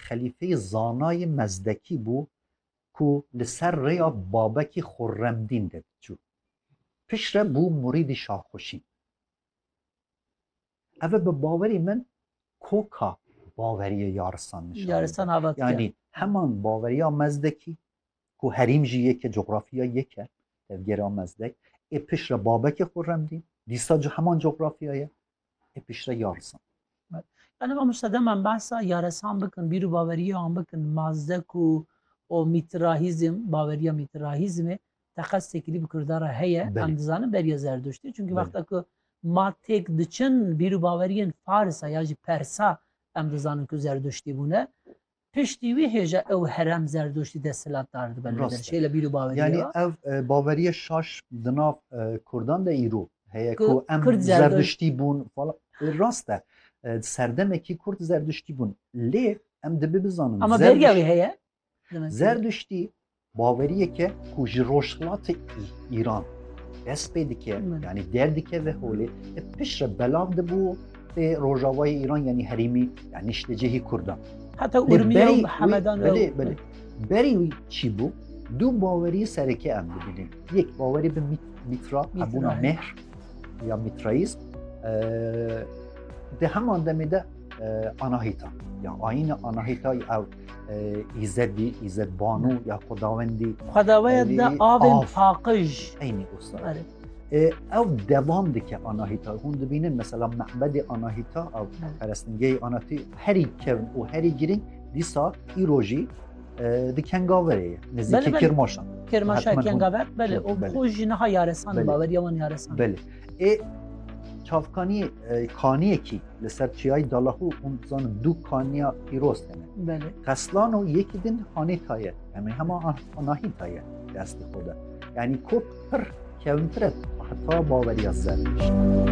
xelîfeyê zanayê Mezdekî bû ku li ser rêya babekî Xurremdîn de diçû. Piştre bû murîdî Şahxuşîn. Ev e bi bawerî min koka baweriyê yarisan nişan Yaristan dide. avat Yanî kir. heman baweriya Mezdekî ku herîm jî yek e, cografiya yek e tevgera Mezdek ê piştre babekê Xurremdîn dîsa ji heman cografiya ye e piştre yarisan. Yani mamosta demen bahsa yaresan bikin, bîr û baweriya wan bikin, mazdek û û mîtirahîzm, baweriya mîtirahîzmê teqez têkilî bi Kurda re heye, em dizanin beriya zerduştî. Çunkî wexta ku ma têk diçin bîr û baweriyên Farisa ya jî Persa em dizanin ku zerduştî bûne. Piştî wî hê jî ew herem zerdûştî desthilatdar dibe li Dirçê li bîr û baweriyê Yanî e. Ev baveriya şaş di nav kurdan de îro heye ku em zerdiştî bûn falan rast e. Di serdemekî kurd zerdiştî bûn lê em dibe bizanin. Ama beriya wî heye? Zerdiştî Baweriyeke ku ji rojhilatê Îran dest pê dike yanî derdike ve holê pişt re belav dibû tê rojavayê Îran yanî herîmî yan niştecihî Kurdan. Heta Urmiye û Hemedan belê belê. Berî wî çî bû dû bawerî sereke em bibînin. Yek bawerî bi mîtra hebûna mehr ya mîtrayîz di heman demê de anahîta ya ayîna anahîta ew Îzedî, Îzedbanu ya Xwedawendî. Xwedawaya de avên paqij. Eynî usta. Ew devam dike anahîta. Hûn dibînin mesela mehbedê anahîta ew perestingehê anatî herî kevn û herî girîng dîsa îrojî di kengaverê ye. Nizîkî kirmaşan. Kirmaşa kengaver belê û xwe jî niha yaresan baweriya wan yaresan. Belê. ê çavkanî kaniyekî li ser çiyayî Dalahû hûn dizanin du kaniya pîroz tene. Belê. Qeslan û yekî din hanê taye. Em ê hema nahî taye destê xwe de. Yanî kop pir kevintire heta baweriya zer.